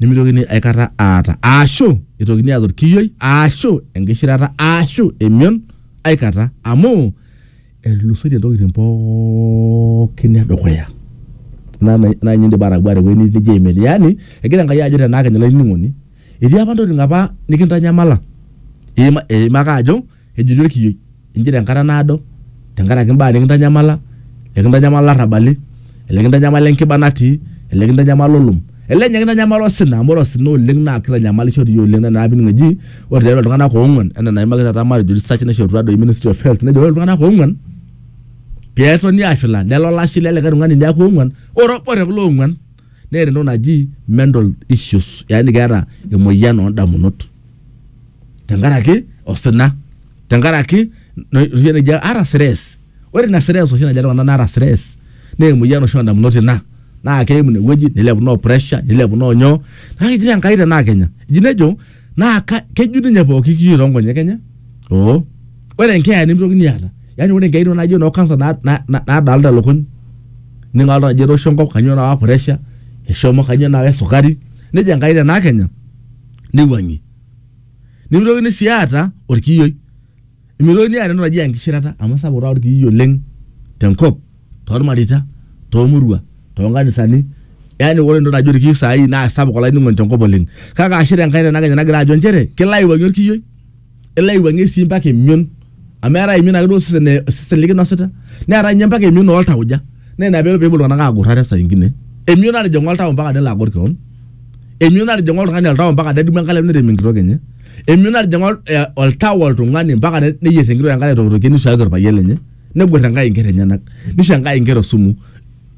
nemitokini aikata aata aashu itokini aata orkiyioi aashu enkishirata aashu emion aikata amu etulusoitie ntokitin pookin edukuya naa naa naa ninye indim atagua tewuei nijo aimin yani egira Enkai ajo tenaa kenya olainining'oni etii apa ntokitin apa nikintanyamala iima eima ake ajo Ejoito olkiyioi, Injere enkata naado te nkaraki imbaa nikintanyamala, ekintanyamal ilarrabali, elikintanyamala enkiba natii, elikintanyamala olom, ele ninye kintanyamala osina amu ore osina oleng naa keitanyamalisho doi oleng naa ina piining eji ore tiatua iltung'anak oong'uan enaa enaimaki taata matejo research naishorutua doi ministry of health nejo ore iltung'anak oong'uan peetoni aashula nelo olashe le likae tung'ani neaku oong'uan ore obo te kulo oong'uan neeta entoki naji mental issues yaani keeta emoyian oondamunot. tenkaraki osina tenkaraki noshi nikijo aata stress ore ina stress oshi najo iltung'anak naata stress naa emoyian oshi ondamunot ina naa keim inewueji nilepu noo pressure nilepu noo nyoo kake eji taa Enkai tenaa kenya eji nejo naa ka keju ninye pooki kiyo tonkonyek enye oh ore enkeeya nemitokini aata yani ore inkeyain naijo inoo cancer na na nadalta ilukuny ining oltung'ani ejo etoosho enkop kanyio nawa pressure eshomo kanyio nawa esukari nejia Enkai tenaa kenya. neiwuang'ie. Nemeitokini sii aata olkiyioi. Meitokini aata entoki naji enkishirata amu sapuk taata olkiyioi oleng tenkop, toolmareita, toomurua, toonkanisani. Yani ore entoki naji olkiyioi saai naa sapuk olainining'oni tenkop oleng. Kake ashe Enkai tenakenya nagira ajo nchere kelo aiwuang'ie olkiyioi. elo aiwuang'ie sii mpaka emion amu eetae emion ake duo osesen eh, osesen likinosita neetae ninye mpaka emion oltauja naa ina peelo peepuo iltung'anak agurra te saa ingine emion natijing'a oltau mpaka nelo agor kewon emion natijing'a oltung'ani oltau mpaka nedumu enkalem nerem enkitok enye emion natijing'a ol- eh, oltau oltung'ani mpaka ne- neyierr enkitok enkare aitokitokie nisuaki orpayian lenye negwet enkae inkerra enyenak nisho enkae inkera osumu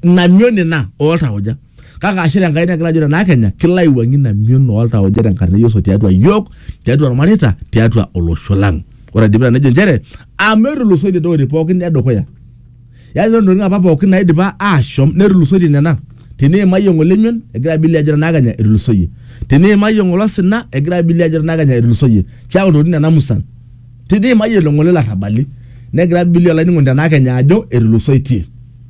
ina mion ina oltauja kake ashe tenkai nekila ajo tenaa kenya kilo aiwuang'ie ina mion oltauja tenkarna e Yesu tiatua yiok tiatua irmareita tiatua olosho lang ore aidipita nejo nchere amu etulusoitie ntokitin pookin edukuya yaani ore ntokitin apa pookin naidipa aashom netulusoitie nena teniimayie ng'ole mion egira bilia ajo tenaa kenya etulusoyie teniimayie ng'ole osina egira bilia ajo tenaa kenya etulusoyie keeku ntokitin nena musan Titi mayiolo ng'ole larrabali negira Billy olainining'oni tenaa kenya ajo etulusoitie.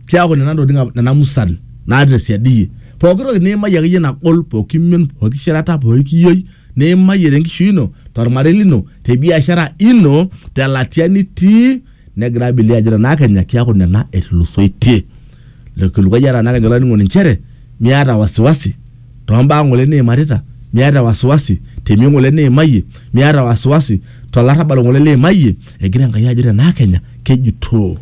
Keaku nena ntokitin apa- nena musan naata tesiadi iyie. Pooki toki niimayie akeyie nagol, pooki mion, pooki shirata, pooki kiyioi niimayie tenkishui ino, tolmarei lino, te biashara ino, te latia nitii, negira Billy ajo tenaa kenya keaku nena etulusoitie. Le kilikuai eeta naa kejo olainining'oni nchere miata wasiwasi too mbaa ng'ole niimarita, miata wasiwasi te mion ng'ole niimayie, miata wasiwasi to larrabal ng'ole liimayie, egira Enkai ajo te naa Kenya kejutoo.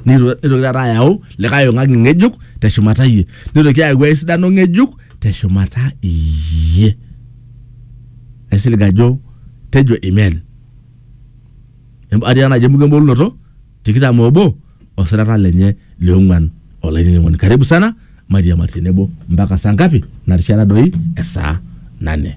Neitoki taata ayau likae ong'ang'i ng'ejuk te shumata iyie. Neitoki ayau ai sidano ng'ejuk te shumata iyie. Aisilig ajo tejo amen. Atii taa naaji emuko embolunoto tikitam obo. osirata lenye le ong'uan olainining'oni. Karibu sana, mairiamari tenebo mpaka saa ngapi? Narishata doi esaa nane.